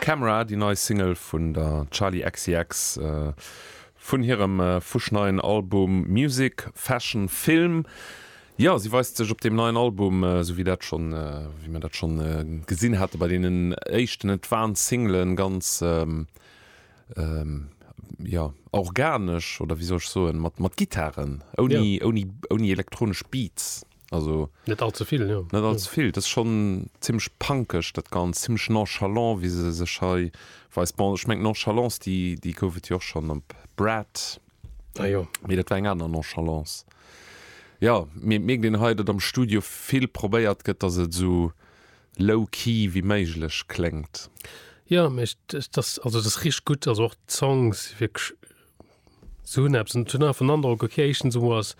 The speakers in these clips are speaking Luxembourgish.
Camera, déi nei Single vun der Charli XCX vun hirem fuschneien Album Music Fashion Film. Jo, si weist sech op deem neien Album, esou wéi dat schonn, wéi mir dat schonn gesinn hate bei deenen éischten Advance Singlen, ganz jo organesch oder wéi soll ech soen mat mat Gittaren ouni ouni ouni elektronesch Beats also net all ze vill jo net all ze vill, dat ass schonn zimmlech punkeg dat Ganzt, zimmlech nonchalant wéi se sech hei weist. Bon ech mengt d'Nonchalance déi déi gouf et jo och schonn op Brad ah jo mee dat war eng aner Nonchalance. Jo mir et mierkt een hei datt am Studio vill probéiert gëtt datt et esou Low key wéi méiglech kléngt. Jo mee dat ass also dat ass richteg gutt, also och d'Songs si wierklech sou hunn eppes an ech hunn einfach den Androck ok éischtens emol ass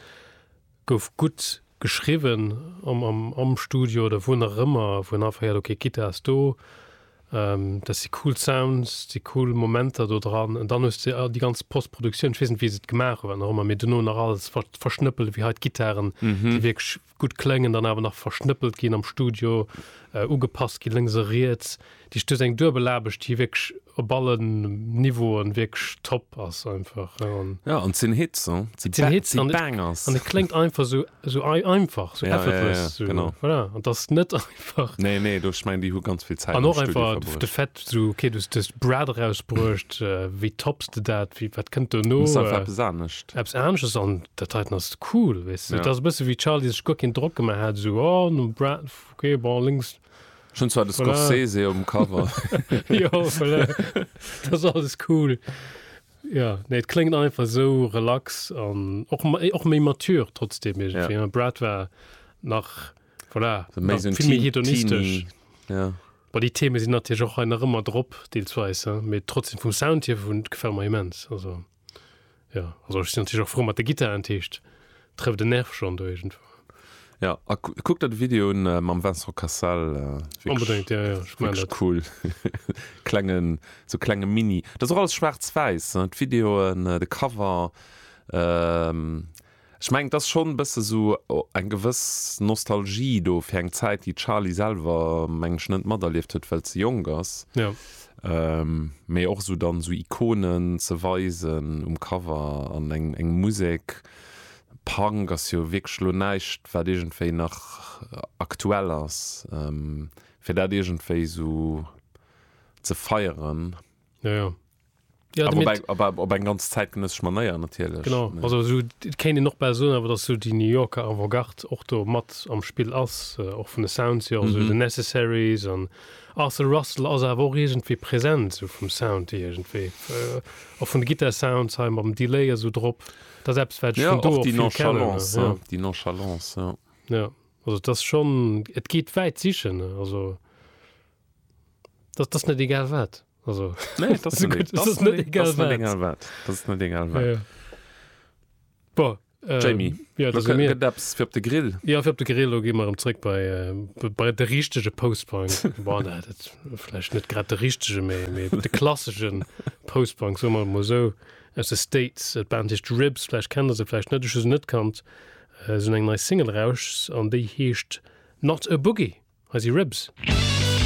gouf gutt geschriwwen am am am Studio oder wou nach ëmmer wou een einfach héiert ok d'Gittar ass do, dat si cool Sounds, dat si cool Momenter do dran an dann hues de déi ganz Postproduktioun, ech weess net wéi se et gemaach hunn, wat nach ëmmer mee duerno nach alles verschnëppelt wéi hei d'Gittaren déi wierklech gutt kléngen, dann awer nach verschnëppelt ginn am Studio, ugepasst ginn, lénks a riets. Dat heescht, do ass eng Duebelaarbecht, déi wierklech op allen Niveauen wierklech top ass einfach. Ja, an et sinn Hits, hein, et sinn Hits, et sinn Bangers. An et kléngt einfach esou einfach, esou effortless. An et ass net einfach. Nee, nee, do, ech mein, déi hu ganz vill Zäit am Studio verbruecht. An och einfach de Fait, so, okay, du hues dëst Brad erausbruecht, wéi topps de dat, wéi, wat kënnt dono? Muss einfach eppes anescht. Eppes anesches an dat heiten ass cool, weess de. Et ass e bësse wéi Charlie sech guer keen Drock gemaach hat, esou, oh, nom Brad, okay, bon, lénks. Ech hunn zwar de Scorsese um Cover. Jo, voilà, et ass alles cool. Jo, nee, et kléngt einfach esou relax an och méi mature trotzdem iergendwéi. Brad war nach. Voilà, so méi so méi hedonistesch. Ja. Bei die Theme sinn natierch och nach ëmmer drop deelsweis méi trotzdem vum Sound hier vun gefell ma immens also ja also sinn natierch och fro mat de Gitter entheescht trëfft den Nerv schon do egent. Ja a kuck dat Video un äh, mam Vincent Cassel äh, unbedingt ja, ja, ich mein cool klengen so klenge Mini dat alles schwarz-weiß äh, Videoen äh, de Cover. Ähm, Ech mengen, et ass schonn e bësse sou eng gewëss Nostalgie do fir eng Zäit, déi d'Charlie selwer, mengen ech, net materlieft huet, well se jonk ass. Mee och sou dann sou Ikonen ze weisen um Cover an eng eng Musek. Punk ass jo wierklech elo näischt, wat iergendwéi nach aktuell ass, fir dat iergendwéi sou ze feieren. Ja, aber op eng, aber op eng ganz zeitgenössesch Manéier natierlech. Genau, nee. also so, kéint een och bal soen, awer dass so déi New Yorker Avant-Garde och do mat am Spill ass, äh, och vun de Sounds hier, also mm -hmm. The Necessaries an Arthur Russell ass awer och iergendwéi präsent, so vum Sound hier iergendwéi. Äh, och vun de Gitar-Sounds hei mam Delay esou drop. Dat ass eppes, wat ja, vun do och vill kennen. Ja, auch ja. die Nonchalance, ja. Ja, also das schon, et geht wäit sichen, also. Dat ass net egal wat. Also, nee, das das das das das net egal wat. Egal wat. Das net egal wat. Ja, ja. Bon, äh, Jamie, ja, das mir Daps fir op de Grill. Ja fir op de Grill gi mar emréck bei, äh, bei de richtege Postbank Datläch net grad de richtege méi méi de klasseschen Postbank so mal mo sou aus de States et band hicht Ribs flläch kennen se flläch net se net kannt äh, sinn eng nei Single rauschs an déi heescht not e Boogie, hei si Ribs. Mm.